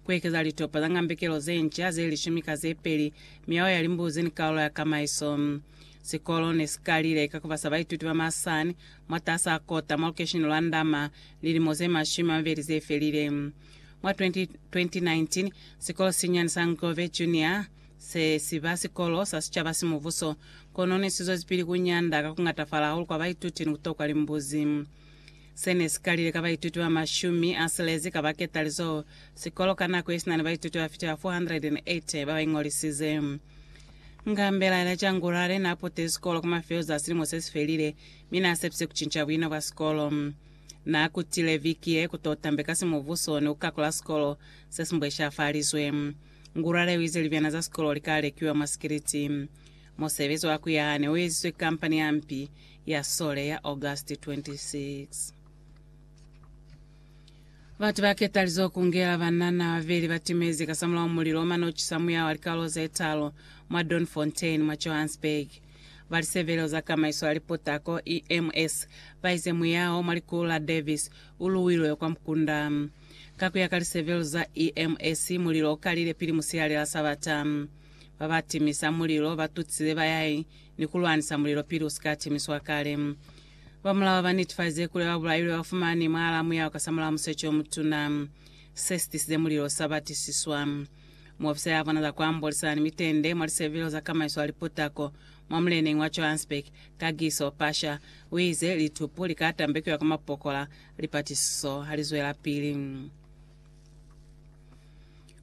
Kuekeza litopa za ngambekelo zenca ze lishumi ka zepeli, miao ya limbuzi ni kaulo ya kamaiso. Sikolo ne si kalile ka kubasa baituti ba masani mwataasa a kota mwa lukeishene lwa Ndama lilimo ze mashumi a mabeli zefelile. Mwa 2019, sikolo sesinyani sa Ngove Junior se si ba sikolo sa sicaba simubuso, kono ne si zwezipili kunyanda ka kungatafala hahulu kwa baituti ni kutokwa limbuzi. Se ne si kalile ka baituti ba mashumi a silezi ka baketalizo sikolo ka nako yesina ni baituti ba fita 480 ba ba iñolisize. Ngambela yena Jangurare na putile sikolo ku mafelo za silimo se si felile mi na sepise ku cinca buina bwa sikolo. Na kutile viki ye ku to tambe ka simubuso ni ku kakula sikolo se si mbweshafalizwe. Ngurare u ize libyana za sikolo li ka lekiwa mwa sikiliti. Musebezi wa ku yaha ne u eziswe ki kampani ya mpi ya sole ya August 26. Batu ba ketalizo ku ngela banana babeli ba timezi kasamulaho mulilo o mane o cisa muya wa likalolo ze talu mwa Doornfontein mwa Johannesburg. Ba lisebelelo za kamaiso ya liputako, EMS, ba ize muya o mwa likulu la Davis u luwilwe kwa mukunda. Ka ku ya ka lisebelelo za EMS, mulilo o kalile pili musihali la Sabata. Ba ba timisa mulilo ba tutsile ba ya ni ku lwanisa mulilo pili u si ka timiswa kale. Ba mulawa ba netifazize kuli ba bulailwe ba fumani mwaalaa muyaho kasamulaho musecho o mutuna. Se si tisize mulilo sa batisiswa. Muofisere a bona za ku ambolisana ni mitende mwa lisevelo za kamaiso ya liputako mwa muleneñi wa Johannesburg, Kagiso Pasha, u ize litupu li ka tambekiwa kwa mapokola lipatisiso ha li zwelapili.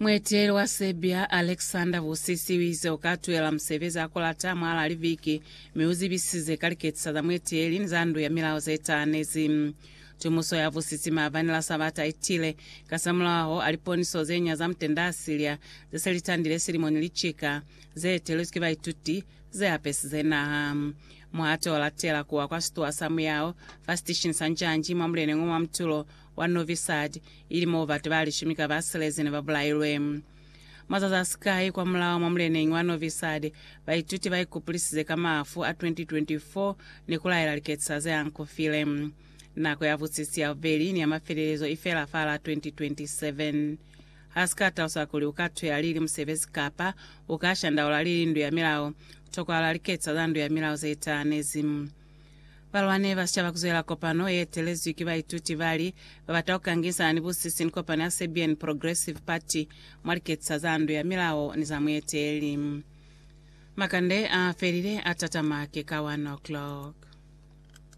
Mueteleli wa Serbia, Aleksandar Vucic uize ukatuhela musebezi hakulata mwahalaa liviki, mi uzibisize ka liketisa za mueteleli ni za ndu ya milao zetahanezi. Tumuso ya Vucic maabani la Sabata itile kasamulaho a liponiso zenya za mutenda a Syria zese litandile silimo ni licika, zeetelezwi ki baituti, zeapesize naha muhato olatela kuwa kwa situwa sa muyao fa sitishini sa Njanji mwa muleneng o mwa mutulo wa Novi Sad, ili moo batu ba lishumi ka ba silezi ne ba bulailwe. Mazazi a sikai kwa mulao mwa muleneñi wa Novi Sad, baituti ba ikupulisize ka mafu a 2024 ni ku laela liketisa ze ankufile. Nako ya busisi ya bubeli ni ya mafelelezo i fela fa la 2027. Ha si ka talusa kuli u ka tuhela lili musebezi kapa u ka shandaula lili ndu ya milao, tokwahala liketisa za ndu ya milao ze itahanezi. Balwani ba sicaba kuzwela kopano ye etelezwi ki baituti bali babata kukangisana ni busisi ni kopano ya Serbian Progressive Party mwa liketisa za ndu ya milao ni za mueteli. Makande a felile a tatama ke ka 1 o'clock.